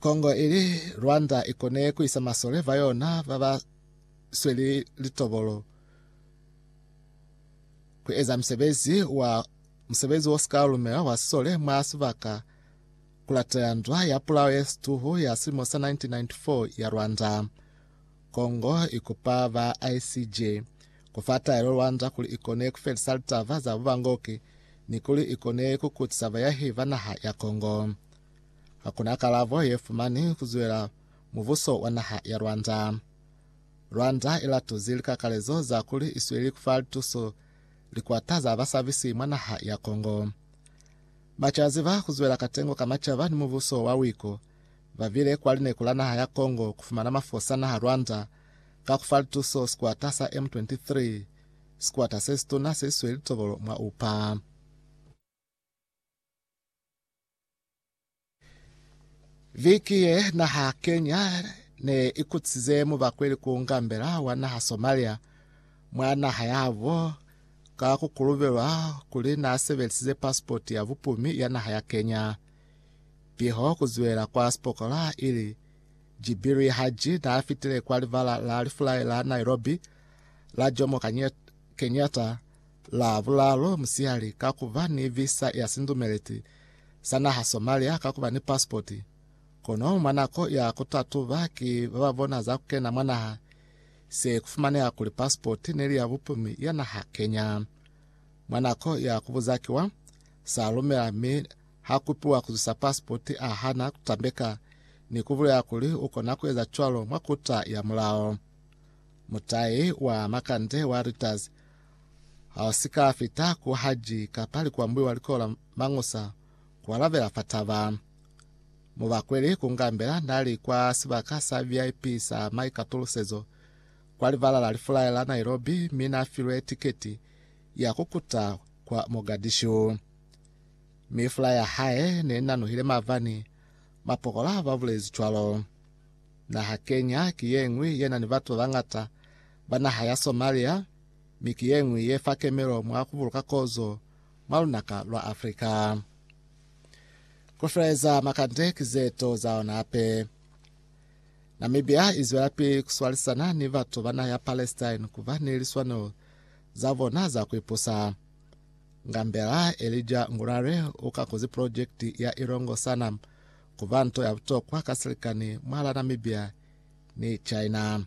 Congo ili Rwanda ikone kuisa masole ba yona baba sweli litobolo ku eza musebezi wa musebezi wo sika lumela wa sisole mwa sibaka kulatela ndwa ya pulao ye situhu ya silimo sa 1994 ya Rwanda. Congo ikupa ba ICJ kufa taelo Rwanda kuli ikone kufelisa litaba za bubangoki ni kuli ikone kukutisa bayahi ba naha ya Congo. Hakuna kalabo ye fumani ku zwela mubuso wa naha ya Rwanda. Rwanda i latuzi likakalezo za kuli i sweli ku fa lituso likwata za basabisi mwa naha ya Kongo. Macazi ba ku zwela katengo ka macaba ni mubuso wa wiko ba bile kwa lineku la naha ya Kongo ku fumana mafosa naha Rwanda ka ku fa lituso sikwata sa M23, sikwata se situna se sweli tobolo mwa upa. Viki ye naha Kenya ne ikutsize mubakweli ku ngambela wa naha Somalia mwa naha yabo ka kukulubelwa kuli na sebelisize pasipoti ya bupumi ya naha ya Kenya. Piho kuziwela kwa sipokola ili Jibiri Haji na fitile kwa libala la lifulai la Nairobi la Jomo Kenyatta Lavulalo musiyali ka ku ba ni visa ya sindumeleti sa naha Somalia ka ku ba ni pasipoti, kono mwa nako ya ku tatuba ki ba ba bona za ku kena mwa naha, se ku fumaneha kuli pasipoti ne li ya bupumi ya naha Kenya. Mwa nako ya ku buza kiwa sa lumela mi ha kupiwa ku zwisa pasipoti a hana ku tambeka ni ku bulela kuli u kona ku eza cwalo mwa kuta ya mulao. Mutai wa makande wa Reuters hausi ka fita ku haji kapa likuambuli wa likola Mangusa kualabela fa taba. Mubakweli Kungambela nali kwa sibaka sa VIP sa maikatulusezo kwa livala la lifulaya la Nairobi mi nafilwe tiketi ya kukuta kwa Mogadishu. Mi fulaya ya hae neinanuhile mavani, mapokola babulezi cwalo. Naha Kenya ki yeñwi yenani batu babañata ba naha ya Somalia, mi ki ye ñwi ye fa kemelo mwa ku buluka kozo mwa lunaka lwa Africa. Ku feleza makande ki ze to za ona hape. Namibia i zwelapili ku swalisana ni batu ba naha ya Palestine ku ba ni liswanelo za bona za ku ipusa. Ngambela Elijah Ngurare u kakuzi pulojekiti ya Ilongo Sanam ku ba nto ya butokwa ka silikani mwahal'a Namibia ni China.